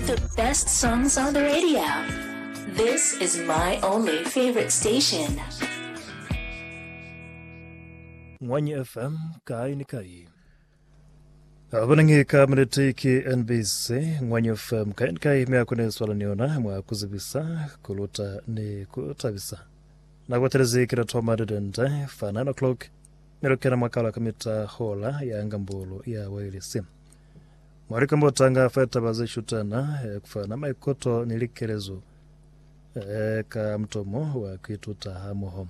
The best songs on the radio. This is my only favorite station. Ngwanyi FM kai ni kai. Abanange ka minete ke NBC Ngwanyi FM kai ni kai me akune swala ni yona mwa kuzibisa kuluta ni kutabisa. Na kwatelezi kila thoma dedende fa 9 o'clock me lokena mwakala ka mita hola ya ngambolo ya wailesi. Mwa likambotanga fa litaba ze shutana, ku fana maikuto ni likelezo ka mutomo wa ku ituta hamoho.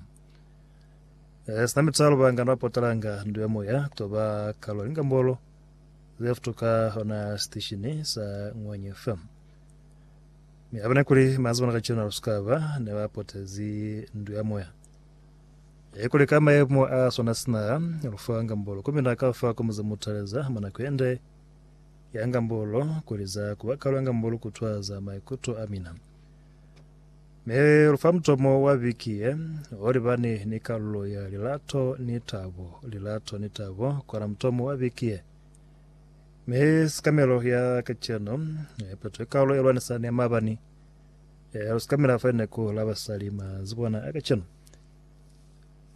Sina mitalo, bangana ba potalanga ndu ya moya ku to ba kalo ya likambolo ze futuka ona siteshini sa Ngwanya FM. Mi abena kuli maazibana kacenu alusukaba ne ba potezi ndu ya moya. He kuli ka mayemo a swana sina lu fa ngambolo, komi na ka fa komo za mutaleza mwa nako yende ya ngambolo, kuli za ku ba kalwa ngambolo ku twa za maikuto a mina. Mi lu fa mutomo wa biki ye, o libani ni kalulo ya lilato ni tabo, lilato ni tabo, kona mutomo wa biki ye. Mi sikamelo ya kaceno, he peto ye kalulo ye lwanisani ya mabani. Ee, lu si ka mila fa linako la basali. Ma zu bona a kacenu,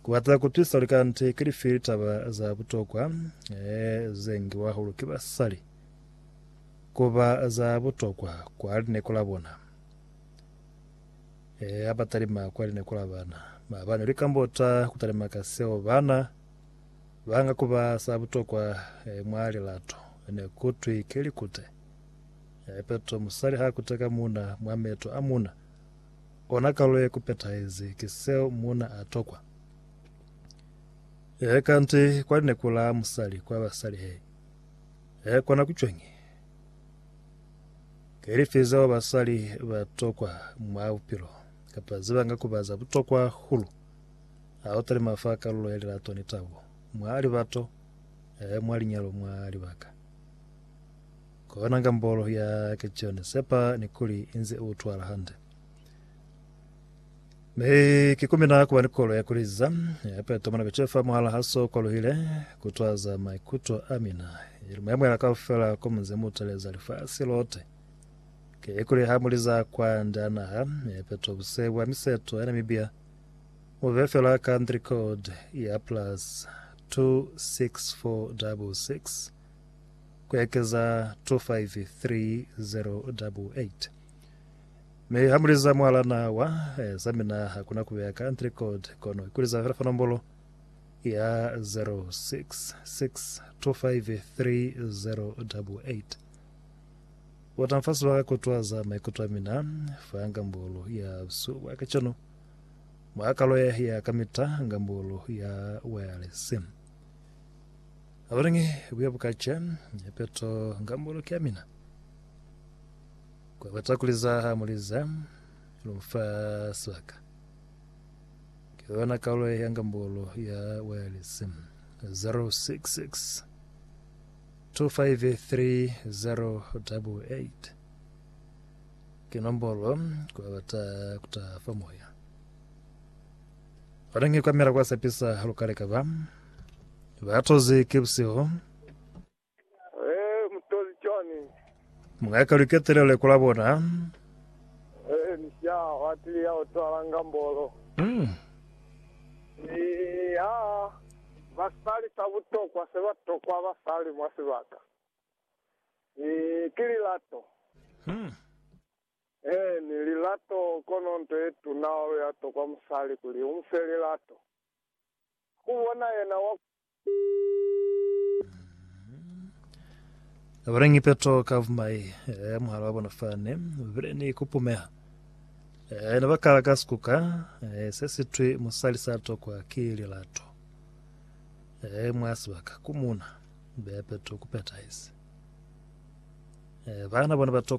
ku bata ku twisa kuli kanti ki lifi litaba za butokwa ee, ze ngiwa hahulu ki basali ku ba za butokwa kwa linako la bona. Ee, ha ba talima kwa linako la bana, mabani lu ikambota ku talima ka seo bana ba nga ku ba za butokwa ee, mwa lilato ne ku twi ki likute. Ipeto, Musali ha kuteka muuna mwa meto a muuna, ona kalo ye kupetahezi ki seo muuna a tokwa. He kanti kwa lineku la musali kwa basali he, he kona ku cwañi? Ke lifi zeo basali ba tokwa mwa bupilo, kapa ze banga kuba za butokwa hulu? Ha u talima fa kalulo ya lilato ni tabo mwa libato, he mwa linyalo mwa libaka. Kona gambolo ya ke John sepa ni kuli inze u twala hande. Me ki kumina kuba ni kolo ya kuliza ya peto mwana bechefa muhala haso kwaluhile kutwaza maikuto a mina ili mayamwela kaufela ko munze mutaleza lifasi lote ke kuli ha muliza kwa nda naha ya peto buse bwa miseto ya Namibia mube fela country code ya plus 26466 ku ekeza 253088. Mi ha mu liza mwalana wa eh, za mina ha kuna ku beya country code, kono ku liza fela fa nombolo ya 0662533088. Bota mfa sebaka ku twaza maikuto a mina fa ngambolo ya busuba kacenu, mwa kalo ya ya kamita ngambolo ya wireless. Abalingi buya bukaca peto nga mbolo ki amina. Kwa bata kuliza ha muliza lumfa sibaka. Ki yona kaule ya nga mbolo ya wireless. 066 253088 ke nombolo kwa bata kutafa moya. Abalingi kwa mela kwa sepisa halukaleka ba. Batozi ki busihu. Ee, mutozi cwani? Mung'aka lu ketelele kula bona. Ee, ni sha hwatili ya otwala ngambolo. Mm. Ni ha basali sa butokwa se ba tokwa basali mwa sibaka. Ni ki lilato. Mm. Ee, ni lilato, kono nto ye tuna hahulu ya tokwa musali kuli u mu fe lilato. ku bona yena wa. Bile ni peto ka vumai, eh, muhala wa bona fani, bile ni kupumeha. Eh, ne ba kala ka sikuka, eh, se sitwi musali sa tokwa ki lilato. Eh, mwa sibaka, ku muna, be peto ku petahezi. Eh, bana bona ba tokwa